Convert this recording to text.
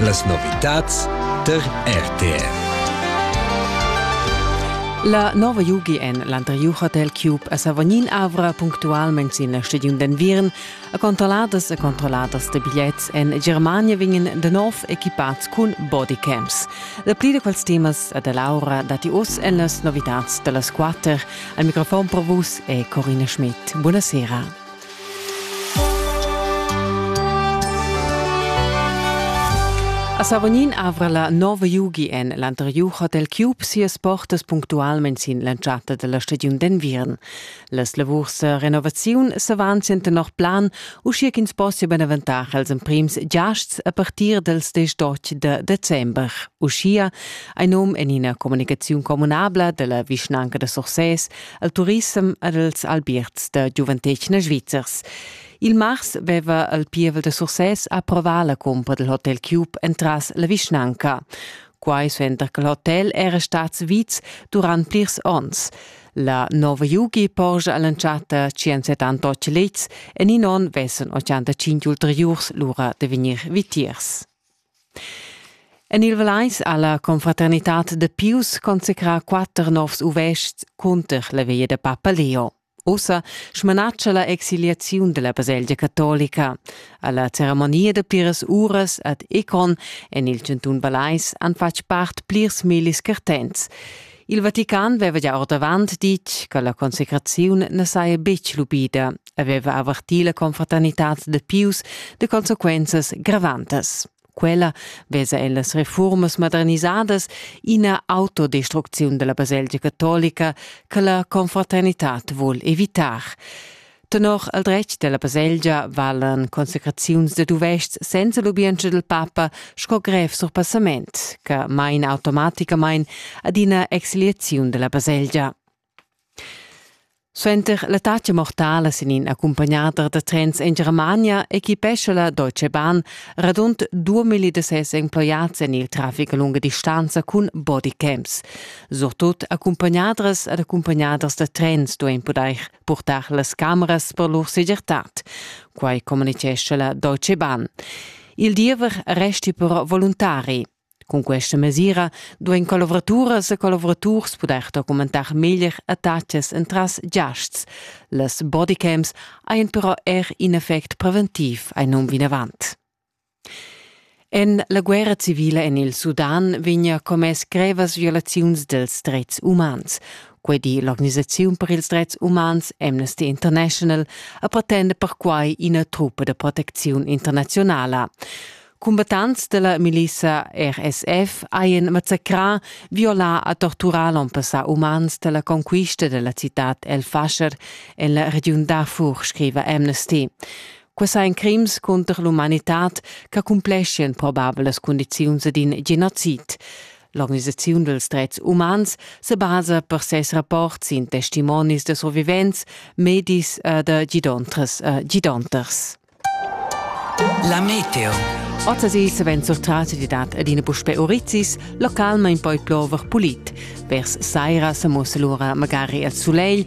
Las novitads tar RTR. La nova Jugi en l'anteriur hotel Cube a Savognin avra punctualmain sin la stagiun d'enviern a controlladas e controlladas de bigliets en Germania vegnan de nov equipats cun bodycams. La pli da quels temas a da Laura datti oz en las novitads da las quatter. Al microfon per vus è Corina Schmidt. Buonasera. A Savognin avra la nova Yugi en l'anteriur Hotel Cube sias portas punctualmain sin l'entschatta della stagiun d'enviern. Las lavurs de renovaziun s'avanzien tenor plan, uschia ch'ins possia benaventar als emprims giasts a partir dels 18 de december. Uschia ein num en ina comunicaziun communabla della vischnanca de Sursès al turissem ed als albierts da giuventetgna svizzers. Il mars veva il pievel da Sursès approvà la cumpra del Hotel Cube entras la vischnanca. Quai suenter che l'hotel era stat viz durant plirs onns. La nova Yugi porscha all'entschatta 178 lets en in onn vessen 85 ulteriurs lura da vegnir vitiers. En il Valeis ha la confraternitad da Pius consecrà quatter novs uvestgs cunter la via da papa Leo. Ussa smanatscha la exiliaziun della baselgia catolica. Alla ceremonia da pliras uras ad Econ en il cantun Valeis han fatg part plirs millis cartents. Il Vatican veva gia ordavant ditg che la consecraziun na saja betg lubida, aveva avertì la confraternitad da Pius de consequenzas gravantas. Quella vesa ellas reformas modernisadas ina autodestrucziun della baselgia catolica che la confraternitad vul evitar. Tenor el dretg della baselgia valan consecraziuns de duvests senza lubientscha del papa sco grev surpassament, che main automaticamain adina exiliaziun della baselgia. Suenter l'attacca mortala sin in accompagnader da trens in Germania equipescha la Deutsche Bahn radund 2000 de ses emploiats en il traffic a lunga distanza cun bodycams. Surtut accompagnadras ed accompagnaders da trens duein podair purtar las cameras per lur segirtad. Quai communitgescha la Deutsche Bahn. Il diever resti però voluntari. Cun questa mesira duein collavoraturas e collaboraturs pudair documentar meglier attacas entras giasts. Las bodycams ein però er in effect preventiv ein um vinavant. En la guerra civila en il Sudan vegnia commess grevas violaziuns dels dretgs umans. Quei di l'organisaziun per ils dretgs umans Amnesty International a pretenda perquai ina truppa de proteziun internazionala. Combattants della milisa RSF haien massacrà, violà a torturar l'onpassà umans della conquista della città El Fasher en la regiun Darfur, scriva Amnesty. Quai sajan crims cunter l'umanitad ch'accumpleschien probabelas cundiziuns ed in genocid. L'organisaziun dels drets umans se basa per ses rapport sin testimonis da survivents, medis e da gidontras e gidonters. La meteo. Ozzasi savent sortras di dat adina puspe Orizis, localmain poi plover pulit. Vers saira se musse lura magari al sulegl